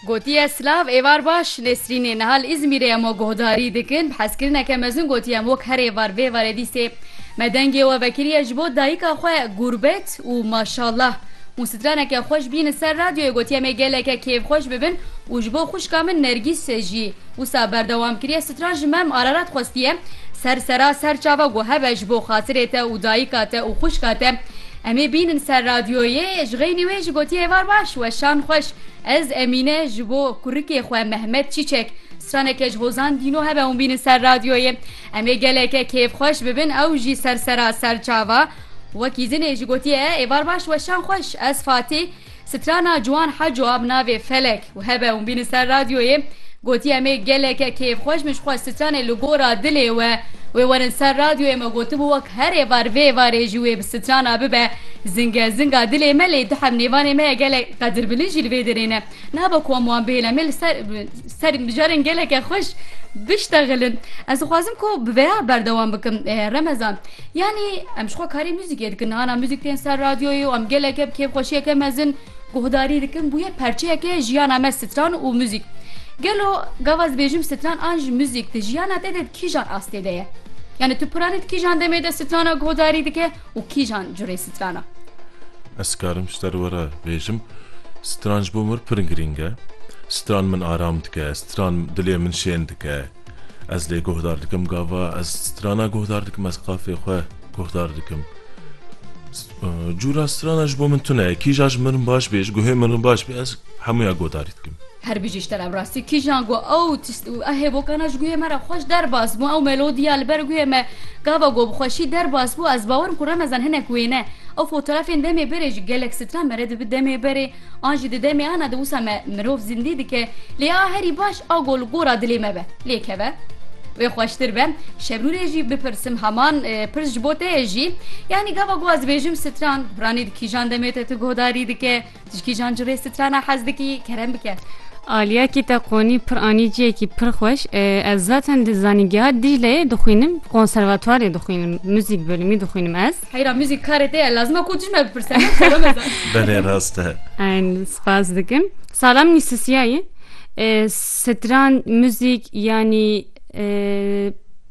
Gotiye silav êvar baş Nesrînê niha li Îzmîrê em we guhdarî dikin bi hezkirineke mezin gotiye em wek herê var vê varê dîsê me dengê we vekiriye ji bo dayika xwe gurbet û maşallah hûn straneke xweş bîn li ser radyoyê gotiye em ê geleke kêfxweş bibin û ji bo xwişka min Nergîs jî wisa berdewam kiriye stran ji me em ararat xwestiye ser sera ser çava got hebe ji bo xatirê te û dayika te û xwişka te Em ê bînin ser radyoyê jixeynî wê ji gotiya êvar baş weşan xweş ez Emîne ji bo kurikê xwe Mehmet Çîçek straneke ji hozan dîno hebe hûn bînin ser radyoyê em ê geleke kêfxweş bibin ew jî sersera serçava wekî zinê ji gotiye êvar baş weşan xweş ez Fatî Strana Ciwan Heco a bi navê Felek û hebe û bîne ser radyoyê gotî em ê geleke kêfxweş min ji xwe stranê li gora dilê we wê werin ser radyoyê me gotibû wek her êvar vê êvarê jî wê bi strana bibe zinge zinga dilê me lê dihem nêvanê me ya gelek qedirbilin jî li vê derê ne nabe ku em wan bihêle em ê li ser Serî mijarên geleke xweş biştexilin. Ez dixwazim ku bi vêya berdewam bikim Remezan. Yanî em jixwe karê muzîkê dikin hana muzîk tên ser radyoyê û em geleke bi kêfxweşiyeke mezin guhdarî dikin bûye perçeyeke jiyana me stran û muzîk. Gelo gava ez dibêjim stran an jî muzîk di jiyana te de di kîjan astê de ye? Yanî tu piranî di kîjan demê de strana guhdarî dike Û kîjan curê stran e? Ez dikarim ji te re were bêjim, stran ji bo min pir girîng e. Stran min aram dike, stran dilê min şên dike. Ez lê guhdar dikim gava ez strana guhdar dikim, ez qafê xwe guhdar dikim. Cûra strana ji bo min tune ye. Kîja ji min baş bê, ji guhê min baş bê ez hemûya guhdarî dikim. Her bijî ji te re rastî kîjan ku ew hêvokana ji guhê me re xweş derbas bû ew melodiya li ber guhê me gava ku bi xweşî derbas bû ez bawer im ku remezan hinek wêne ew fotorafên demê berê ji gelek stran me re dibi demê berê an jî di demê ana di wisa me mirov zindî dike lê a herî baş a ku li gora dilê me be lê keve wê xweştir be şebnûrê jî bipirsim heman pirs ji bo te ye jî yanî gava ku ez dibêjim stran piranî di kîjan demê te tu guhdarî dike. Tişkî jan ji rê strana hez dikî kerem bike. Aliya kî te qonî pir anî ciyekî pir xweş. Ez zaten di zanîngeha Dîcleyê dixwînim, konservatuarê dixwînim, muzîk bölümî dixwînim ez. Heyra muzîk karê te ye, lazim e ku tişt me bipirse. Belê rast e. Eyn spas dikim. Salam nîsisiyayî. Stran, muzîk yanî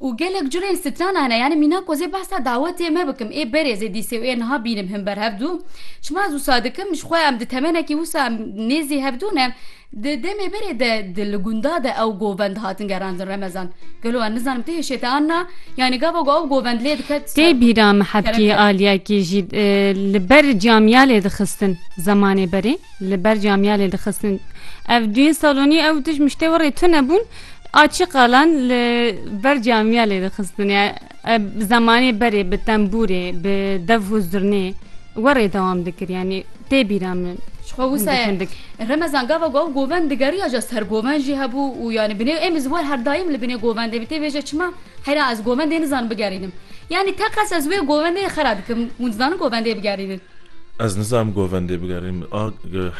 Û gelek curên strana hene. Yanî mîna ku ez ê behsa dawetê me bikim, ê berê ez ê dîsê û ê niha bînim him ber hev du. Çima ez wisa dikim, ji xwe em di temenekî wisa em nêzî hev du ne. Di demê berê de di li gunda de ew govend dihatin gerandin Remezan. Gelo ez nizanim tu hêşê te an na? Yanî gava ku ew govend lê diket ser. Tê bîra me hebkê aliyekî jî li ber camiya lê dixistin zemanê berê li ber camiya lê dixistin. Ev duyên salonî ew tij miştê were tune bûn. Açî qalan li ber camiya lê dixistin ya zemanê berê bi tembûrê bi dev û zirnê werê dewam dikir yanî tê bîra min. Xwe wisa remezan gava gav govend digeriya ja ser govend jî hebû û yanî binê êm ez wer her daîm li binê govendê bi tê vê je çima heyra ez govendê nizanim bigerînim yanî teqes ez wê govendê xera dikim hûn dizanin govendê bigerînin. Ez nizanim govendê bigerînim. A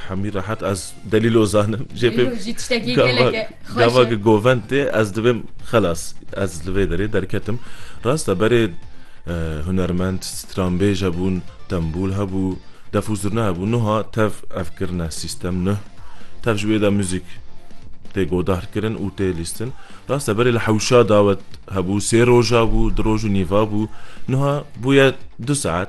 hemî rehet ez delîlo zanim. Jê pê gava ki govend tê ez dibêm xelas. Ez li vê derê derketim. Rast e berê hunermend, stranbêj hebûn, tembûl hebû, def û zurna hebû. Nuha tev ev kirine sîstem nuh. Tev ji wê de muzîk tê godar kirin û tê lîstin. Rast e berê li hewşa dawet hebû, sê roja bû, di roj û nîva bû. Nuha bûye du saet.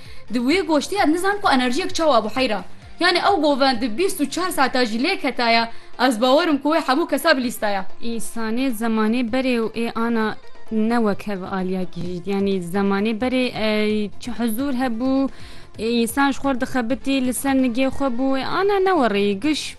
Di wê goştê ez nizan ku enerjiyek çawa bû heyra. Yanî ew govend di bîst û çar sata jî lêk hetaye, ez bawer im ku wê hemû kesa bilîstaye. Însanê zemanê berê û ê ana ne wek hev aliya gihîşt. Yanî zemanê berê çi huzûr hebû, ê însan ji xwe re dixebitî, li ser nigê xwe bû, ê ana ne werî giş.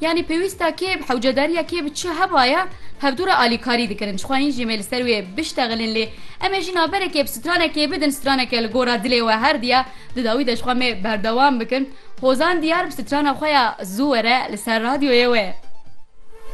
Yanî pêwîst e kê hewcedariya kê bi çi hevaye hevdû re alîkarî dikin. Dixwayîn jî me li ser wê biştexilin lê em ê jî naberekê bi stranekê bidin. Straneke li gora dilê we herdî ye. Di dawî de jixwe me berdewam bikin. Hozan Diyar bi strana xwe ya Zû were li ser radyoyê wê.